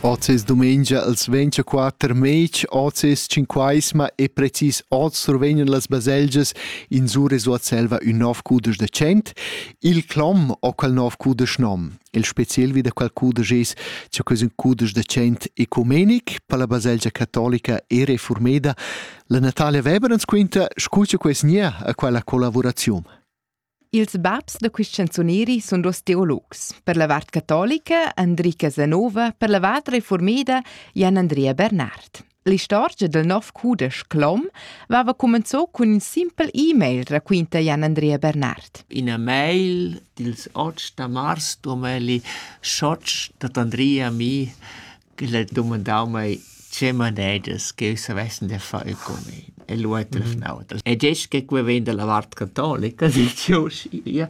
Ozes dumengia als 24 mei, ozes cinquaisma e precis oz survegnan las baselgias in sure sua selva ün nov cudesch de cent, il clom o quel nov cudesch nom. Il speciel vi da quel cudesch es che ques ün cudesch de cent ecumenic per la baselgia catolica e reformeda. La Natalia Weber ens quinta, scucha ques nia a quella collaboraziun. Ils babs da quist canzuneri sun duos teologs, per la vart catolica Andrica Zanova, per la vart reformeda Jan Andrea Bernard. L'istorgia del nov cudesch Clom vava comenzò cun ün simpel e-mail, raquinta Jan Andrea Bernard. In e-mail dils 8 da mars 2008 dat Andrea mi ch'el ha dumandau mei tgei manedas ch'jeu savessi da far io cun el. E lu ha telefonau. E detg che quei vegn dalla vart catolica, dil cheu schia.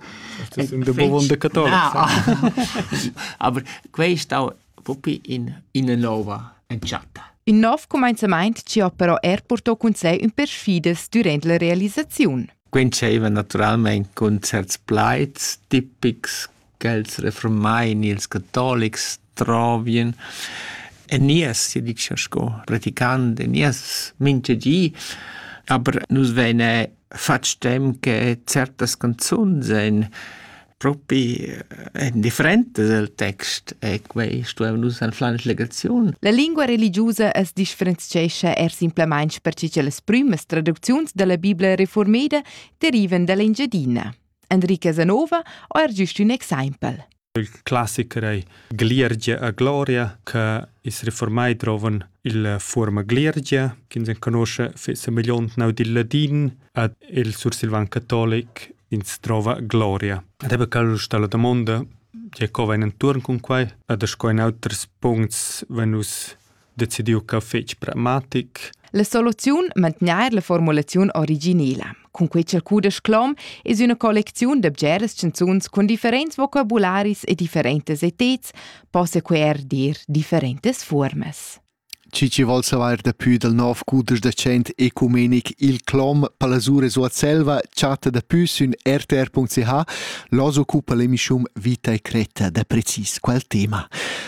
Ti sum da bugen da catolics. Aber quei è stau propi in, ina nova entschatta. Il nov cumenzament ci ha però er portò cun sé ün perfides durant la realisaziun. Quentscheva naturalmente concerts plaids tipics ch'els refurmain ils catolics trovien en nies, sia dicia sco praticant en nies mintga di. Aber nus veine fatg tem che certas canzuns ein propi eh, en differentas el text e quei stuevan nus en plan legaziun. La lingua religiosa es differenzchescha er simplemente perche che las prümas traducziuns dalla Bibla reformeda derivan dall'Engiadina. Enrique Zanova ho er giust ün exaimpel. Il classicher ei Gliergia a Gloria, che is reformai drovan il forma Gliergia, che se conosce fece miliont nau dil ladin, ad il sursilvan catolic ins trova Gloria. Ed ebbe cal sta la domanda, che co va in intorn con quai, ad sco in auters puncts venus decidiu ch'eu fetsch pragmatic. La soluziun mantgnair la formulaziun originela. Cun quei ch'el cudesch clom es üna collecziun da bgeras chanzuns cun differents vocabularis e differentas eteds, possa que er dir differentas fuormas. Chi chi vol savair dapü dal nov cudesch da dschent ecumenic Il clom palasure suot selva chatta dapü sün rtr.ch. L'os occupa l'emischum Vita e Cretta da precis quel tema.